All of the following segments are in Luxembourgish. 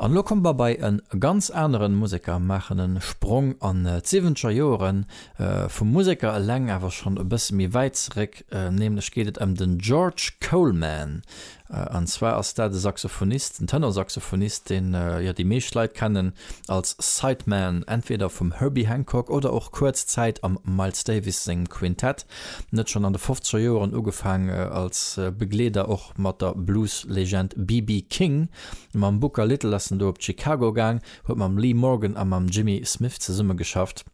An elo kommt mer bei en ganz aneren Museker, maachen en Sprong an d'siwenzger Joeren, vum Museker eleng awer schon e bëssen méi wäit zeréck, nämlech geet et em den George Coleman, an zwar ass dat e Saxophonist, en Tenorsaxophonist, deen jo déi meescht Leit kennen als Sideman entweder vum Herbie Hancock oder och kuerz Zäit am Miles Davis sengem Quintett, en huet schon an de fofzeger Joeren ugefaang als Begleeder och mat der Blues Legend BB King. Mam Booker Little ass en do op d'Chicago gaang, huet mam Lee Morgan a mam Jimmy Smith zesummegeschafft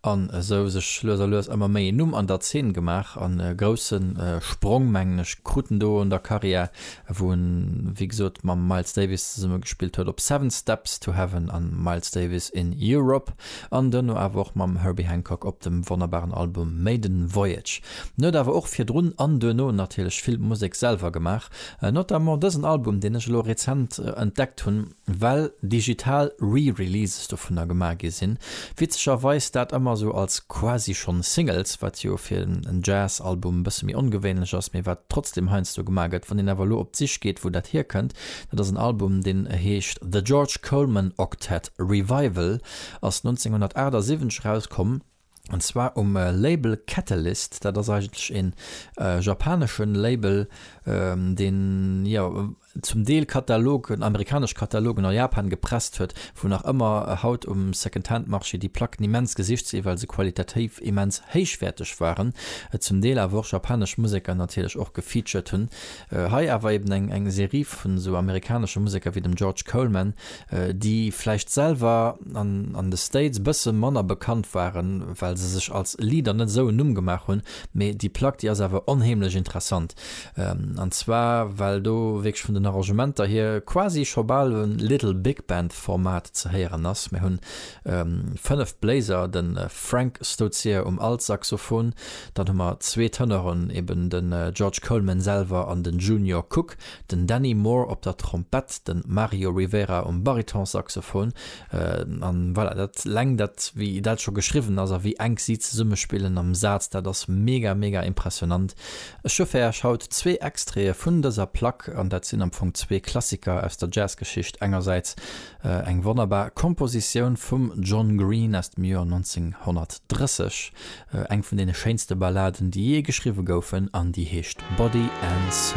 an esou sech lues a lues ëmmer méi een Numm an der Zeen gemaach an e grousse Sprong, mengen ech, krut en do an der Karriär, wou en, wéi gesot, mam Miles Davis zesummegespillt huet op Seven Steps to Heaven a Miles Davis in Europe an duerno awer och mam Herbie Hancock op dem wonnerbaren Album Maiden Voyage. En huet awer och virdrun an duerno natierlech vill Musek selwer gemaach. Notamment dësen Album, deen ech elo rezent entdeckt hunn, well digital Re-Releases dovunner gemaach gi sinn. Witzegerweis dat ëmmer esou als quasi schonn Singles, wat jo fir en Jazz-Album e bësse méi ongewéinlech ass, mee wat trotzdeem heiansdo gemaach gëtt. Wann een awer elo op d'Sich geet, wou dat hierkënnt, dat ass en Album, deen heescht The George Coleman Octet Revival, ass 1978 erauskomm. an zwar um Label Catalyst. Dat ass eigentlech een japanesche Label, deen jo zum Deel Katalogen, amerikanesch Katalogen a Japan gepresst huet, wou nach ëmmer haut um Secondhand Marché déi Placken immens gesicht sinn, well se qualitativ immens héichwäerteg waren, et zum Deel awer och japanesch Museker natierlech och gefeatured hunn. Hei awer eben eng Serie vun esou amerikanesche Museker wéi dem George Coleman, déi vläicht selwer an de States e bësse manner bekannt waren, well se sech als Leader net esou en Numm gemaach hunn, mee déi Plack déi ass awer onheemlech interessant, an zwar well do wierklech vun den Arrangementer hier quasi scho bal e Little Big Band Format ze héieren ass. Mir hunn 5 Bléiser, de Frank Stozier um Altsaxophon, dann hu mer zwee Tënoren, eben de George Coleman selwer an de Junior Cook, den Danny Moore op der Trompett, de Mario Rivera um Baritonsaxophon, an voilà, dat leng dat wéi dat scho geschriwwen ass a wéi enk si zesummespillen am Saz, dat ass mega mega impressionnant. Ech hu fir Äech haut zwee Extraite vun dëser Plack, an dat sinn am Fong zwee Klassiker aus der Jazzgeschicht, engersäits eng wonnerbar Kompositioun vum John Green aus dem Joer 1930, eng vun deene schéinste Balladen déi jee geschriwwe goufen, an déi heescht Body and Soul.